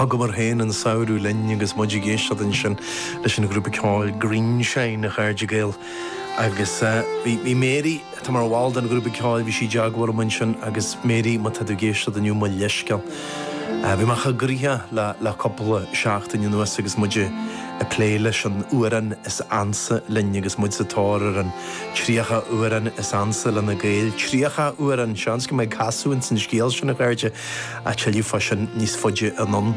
Thugamar féin an samhradh linn agus muid ag éisteacht ansin leis an ghrúpa ceoil Greenshine, a chairde Gael. Agus bhí Mary, atá mar bhall den ghrúpa ceoil, bhí sí i dteagmháil liom ansin agus Mary, má tá tú ag éisteacht inniu, mo leithscéal. Bhí mé an-ghnóitheach le cúpla seachtain anuas agus muid ag plé leis an amhrán is ansa linn agus muid sa tóir ar an Tríocha amhrán is ansa leis na Gaeil. Tríocha amhrán! Seans go mbeidh casadh ins an scéal sin, a chairde, ach tuilleadh fá sin níos faide anonn.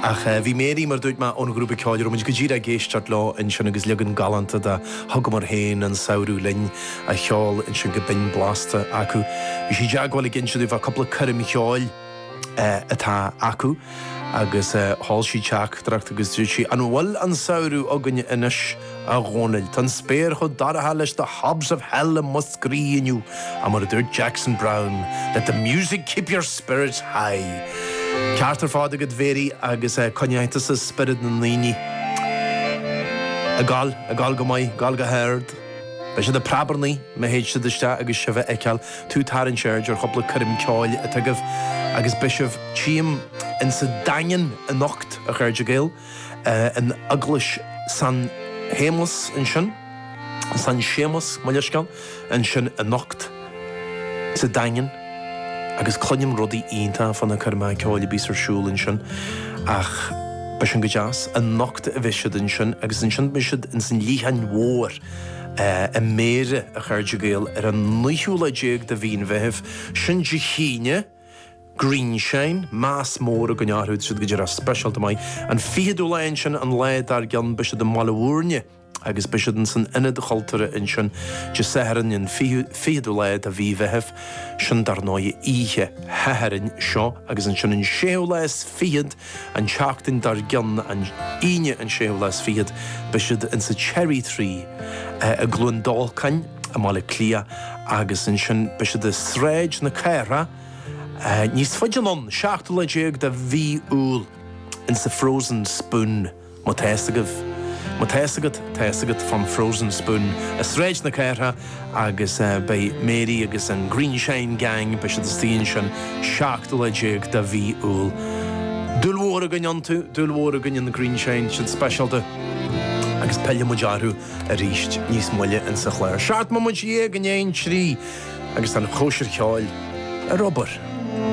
Ach eh, bhí Mary, mar dúirt mé, ón ghrúpa ceoil a raibh muid go díreach ag éisteacht leo ansin agus leagan galánta de Thugamar Féin an Samhradh Linn á cheol ansin go binn blasta acu. Bhí sí i dteagmháil ag inse dúinn fá cúpla coirm cheoil, atá acu agus sheol sí teachtaireacht agus dúirt sí, An bhfuil an samhradh againn anois, a Dhónaill? Tá an spéir chomh dorcha leis The Hobs of Hell i Múscraí inniu, ach mar a dúirt Jackson Browne, Let the music keep your spirits high. Ceart ar fád agat, Mhary, agus coinneoidh tusa spiorad na ndaoine. Ag gol, ag gol go maith, gol go hard. Beidh siad ag preabarnaigh má théid siad isteach agus sibh a fheiceáil, tá tú ag tarraingt aird ar chúpla coirm ceoil atá agaibh agus beidh sibh tchím insa Daingean anocht, a chairde Gael, in Eaglais San Shéamas ansin, San Séamas, mo leithscéal, ansin anocht. sa Daingean agus cluinim rudaí iontacha fá na coirmeacha ceoil a bíos ar siúl ansin ach beidh sin go deas. Anocht a bheas siad ansin agus ansin beidh siad ins an Leitheanach Mhór i mBéarra, a chairde Gael, ar an naoú lá déag de mhí an Mheithimh. Sin Dé hAoine, Greenshine, meas mór againn orthu, siad go díreach speisialta maith. An fichiú lá ansin, an lá dár gcionn, beidh siad i mBaile Mhúirne, agus beidh siad insan Ionad Chultúrtha ansin Dé Sathairn an 20ú lá de mhí an Mheithimh, sin dar ndóigh oíche Shathairn seo, agus ansin an séú lá is fichead an tseachtain dár gcionn, an Aoine an séú lá is fichead, beidh siad insa Cherry Tree i gCluain Dolcáin i mBaile Cliath agus ansin beidh siad i Sráid na Cathrach níos faide anonn, seachtú lá déag de mhí Iúil insa Frozen Spoon. Má tá fhios agaibh, má tá fhios agat, tá fhios agat fán Frozen Spoon i Sráid na Cathrach agus beidh Mary agus an Greenshine Gang, beidh siad istigh ansin 17 lá de mhí Iúil. Dúil mhór againn iontu, dúil mhór againn in Greenshine, siad speisialta agus pillfidh muid orthu arís níos moille insa chlár. Seacht mbomaite dhéag i ndiaidh an trí agus tá an chóisir cheoil ar obair!